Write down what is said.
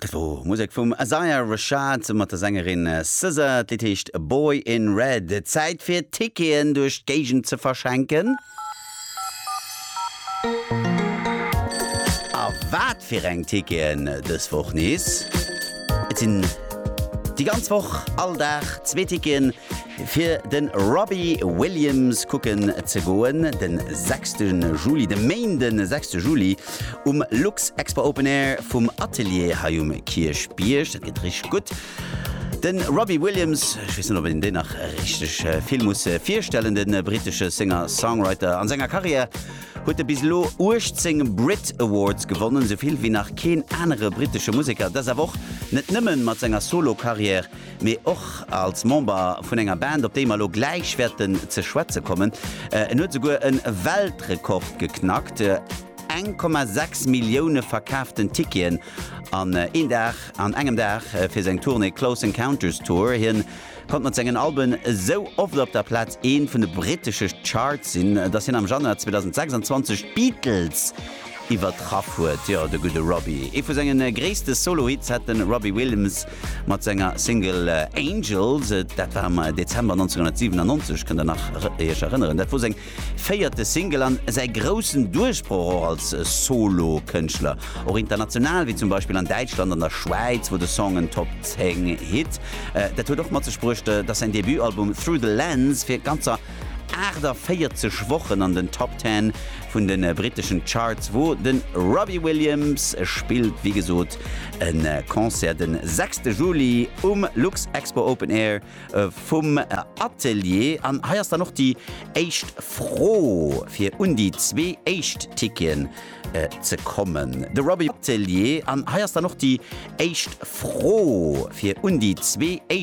Dat wor Musek vum Isaiah Rashad mat der Sängerin SZA. D'Lidd heescht Boy in Red. Zäit fir Ticketen duerch d'Géigend ze verschenken. A wat fir eng Ticketen dës Woch nees? Et sinn déi ganz Woch all Dag zwee Ticketen. Fir de Robbie Williams kucke ze goen, de sechste Juli, de Méinde sechste Juli, um Luxexpo Open Air vum Atelier hei um Kierchbierg. Dat gëtt richteg gutt. De Robbie Williams, ech weess net, ob een deen nach richteg vill muss virstellen, de brittesche Singer-Songwriter. An senger Karriär huet e bis elo 18 Brit Awards gewonnen, esou vill wéi nach keen anere brittesche Museker. Dat ass awer och net nëmme mat senger Solo-Karriär, mee och als Member vun enger Band, op déi mer elo gläich wäerten ze schwätze kommen. En huet esouguer e Weltrekord geknackt, 1,6 Millioune verkaaften Ticketen an een Dag, an engem Dag, fir seng Tournée Close Encounters Tour. Hien konnt mat sengen Alben esou oft op der Plaz Eent vun de brittesche Charts sinn, dass hien am Januar 2026 d'Beatles iwwertraff huet. Jo, de gudde Robbie. Ee vu senge gréisste Solo-Hits hat de Robbie Williams mat senger Single Angels. Dat war am Dezember 1997, kënnt Der nach Iech erënneren? Dat wor seng véierte Single an säi groussen Duerchbroch och als Solo-Kënschtler. Och international, wéi zum Beispill an Däitschland an der Schwäiz, wor de Song en Top 10 Hit. Dat huet och mat sech bruecht, dass säin Debutalbum Through the Lens fir ganzer 48 Wochen an den Top 10 vun de britteschen Charts wor. De Robbie Williams spillt wéi gesot E Concert de sechste Juli um Luxexpo Open Air vum Atelier. An hei ass dann och déi éischt Fro, fir un déi zwee éischt Ticketen ze kommen. De Robbie Atelier. An hei ass dann och déi éischt Fro, fir un déi zwee éischt.